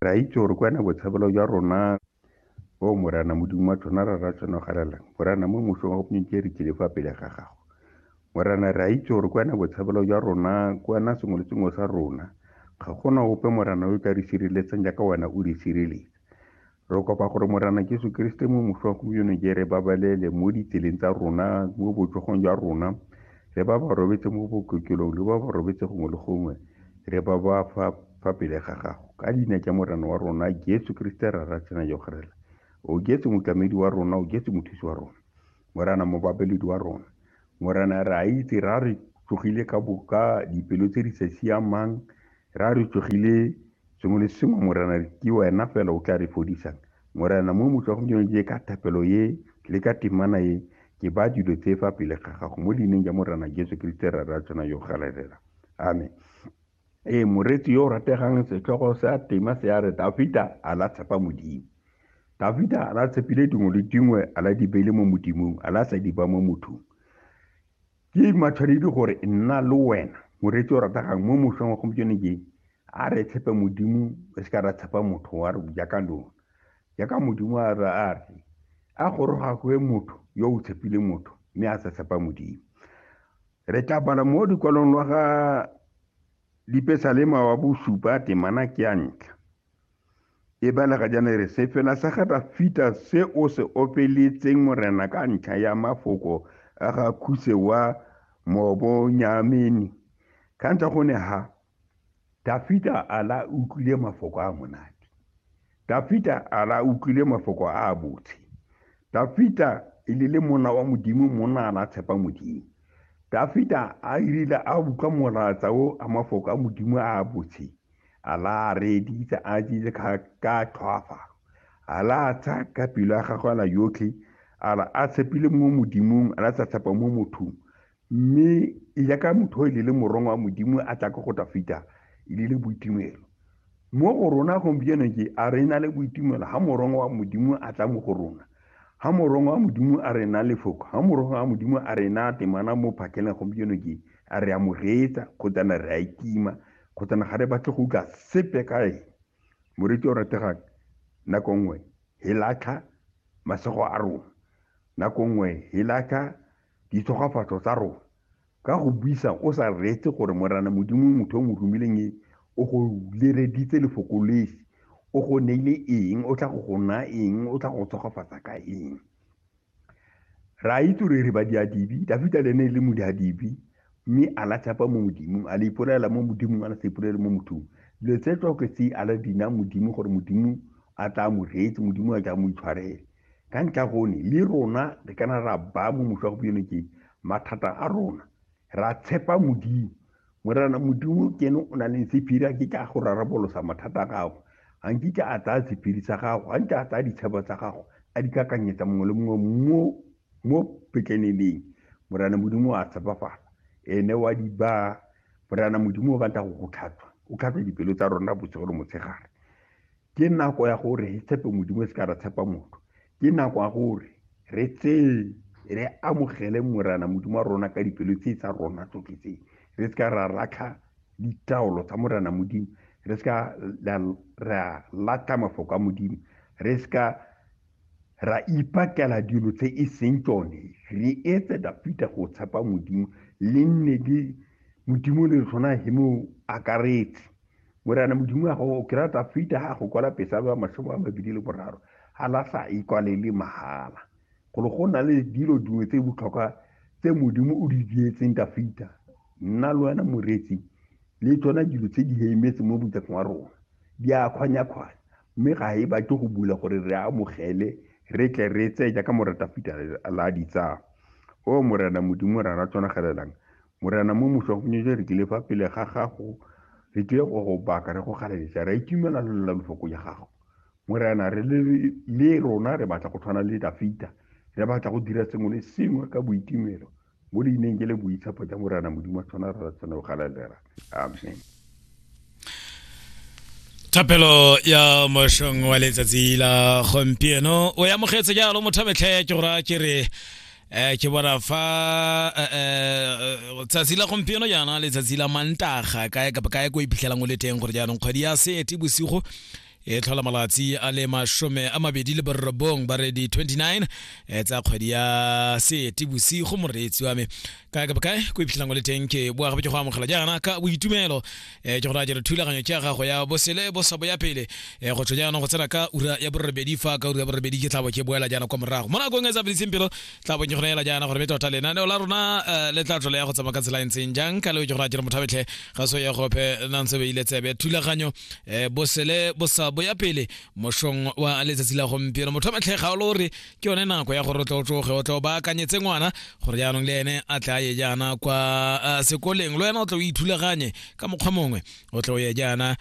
Re a itse gore kwa na botshabelo jwa rona o Morana Modimo wa tshwana ra ra tshwanogalelang Morana mo mosong wa go pnike re tlile fa pele ga gago Morana re a itse gore kwa na botshabelo jwa rona kwa na sengwe le sengwe sa rona ga gona ope Morana yo ka re sireletsang jaaka wena o re sireletsa Re kopa gore Morena Jesu Keresete mo moso wa gompieno je re babalele mo ditseleng tsa rona, mo botsogong jwa rona, le ba ba robetse mo bokokelong, le ba ba robetse gongwe le gongwe, re ba ba fa fa pele ga gago. Ka leina ja Morena wa rona Jesu Keresete ra ra tsena jo gerela. O jetse motlamedi wa rona, o jetse mothusi wa rona. Morena mobabeledi wa rona. Morena re a itse ra re tsogile ka boka dipelo tse di sa siamang, Ra re tsogile sengwe le sengwe morena ke wena fela o tla re fodisang morena mo motlhogong ke je ka thapelo ye le ka temana ye ke ba dilo tse fa pele ga gago mo leineng ja morena jesu kriste ra ra tsena yo galelela amen ee moretsi yo o rategang setlhogo sa tema se a re dafita a la tshepa modimo dafita a la tshepile dingwe le dingwe a la di beile mo modimong a la sa di ba mo mothong ke matshwanedi gore nna le wena moreetsi o rategang mo mošweng wa gompieno ke a re tshepe modimo re se ka ra tshepa motho wa re jaaka lona jaaka modimo a re a re a goroga goe motho yo o tshepile motho mme a sa tshepa modimo re tla bala mo dikwalong lwa ga lipesalema wa bosupa temana ke ya ntlha e balega jaana e re sefela sa ga dafita se o se opeletseng morena ka ntlha ya mafoko a ga khuse wa mobonyamene ka ntlha go ne ha dafita a la utlwile mafoko a monate dafita a la utlwile mafoko a a botse dafita e le le mona wa modimo mona a la tshepa modimo dafita a irile a utlwa molatsa o a mafoko a modimo a a botse ala a reeditse a tsitse ka tlhwaafalo ala a tsaya ka pelo ya gagwe ala yotlhe ala a tshepile mo modimong ala sa tshepa mo mothong mme jaaka motho o e le morongwa wa modimo a tla ka go tla feta e le le boitumelo mo go rona gompieno ke a re na le boitumelo ga morongwa wa modimo a tla mo go rona ga morongwa wa modimo a re na lefoko ga morongwa wa modimo a re na temana mo phakeleng gompieno ke a re amogetsa kgotsana re a itima kgotsa na ga re batle go utlwa sepe ka eng moreti o rategang nako nngwe e latlha masego a rona nako nngwe e latlha ditshogafatso tsa rona ka go buisa o sa reetse gore morana modimo motho o mo romileng e o go lereditse lefoko lesi o go neile eng o tla go go naya eng o tla go tshogafatsa ka eng Re a itse gore re badiadibi, Dafita le ene e le modiadibi, mme a la tshepa mo Modimong, a le ipolaela mo Modimong, a la sa ipolaele mo mothong. Dilo tse tsoke tse a la dina Modimo gore Modimo a tla mo reetse, Modimo a tla mo itshwarele. Ka ntlha gone, le rona re kana ra ba mo mošwa gompieno ke mathata a rona. ra tshepa modimo morena modimo ke ene o na leng sephiri a ke ka go rarabolosa mathata a gago ga nkitla a tsaya sephiri sa gago ga nke a tsaya ditshebo tsa gago a di kakanyetsa mongwe le mongwe mo mo petleneleng morena modimo a tshepafala ene wa di ba morena modimo o batla go go tlhatswa o tlhatswa dipelo tsa rona bosigo le motshegare ke nako ya gore re tshepe modimo e se ka ra tshepa motho ke nako ya gore re tseye re amogele morana modimo wa rona ka dipelo tse tsa rona tsotlhe tse re se ka ra latlha ditaolo tsa morana modimo re se ka ra latlha mafoko a modimo re se ka ra ipakela dilo tse e seng tsone re etse dafita go tshepa modimo le nne le modimo le tlhona he mo akaretse morena modimo wa gago ke rata fita ga go kwala pesa ba mashomo a mabedi le boraro ga la sa e kwalele mahala golo go na le dilo dingwe tse botlhokwa tse modimo o di dietseng ka fita nna le wena moretsi le tsona dilo tse di heimetse mo botseng wa rona di a kgwanya-kgwanya mme ga e batle go bula gore re amogele re tle re tseye jaaka moretafita la ditsaya o morena modimo ra ra tsonagelelang Morena mo mošwa go nyetse re tlile fa pele ga gago re tlile go go baka re go galeletsa re itumela le lela lefoko ya gago morena re le rona re batla go tshwana le dafita re batla go dira sengwe le sengwe ka boitumelo mo leineng ke le boitshepo ja morena modimo tshwana re tshwane go galelela amen thapelo ya mošong wa letsatsi la gompieno o e amogetse jalo motho metlhe ke gora ke re um ke bona fa eh, eh, tsatsi la gompieno jaana letsatsi la mantaga kae kapa kae ko iphitlhelang o le teng gore jaanong kgwedi ya seete bosigo e tlhola malatsi a le masome a mabedi le borobong baredi 29 e tsa kgwedi ya seete bosigo moreetsi wa me kae ka bokae ko iphitlhelang o le teng ke boa gape ke go amogela jaana ka boitumelo um ke gore a jere thulaganyo ke ya gago ya bosele bosabo ya pele um go tsho jaanong go tsena ka ura ya borobedi fa ka ura ya borobedi ke tlabo ke boela jaana kwa morago mo nakong e sa fediseng pelo tla bong ke go neela jaana gore be tota lenaneo la rona eh, le tla tlole ya go tsamaya ka tsela e ntseng jang ka leo ke gore a kere mothabetlhe ga so ya gope nantse beile tsebe thulaganyo eh, bosele bosa bo ya pele mošong wa letsatsi la gompieno mothabetlhe ga o le gore ke yone nako ya gore o tle o tsoge o tle o baakanyetse ngwana gore jaanong le ene a tle a ye jaana kwa eh, sekoleng le wena o tle o ithulaganye ka mokgwa mongwe o tle o ye jaana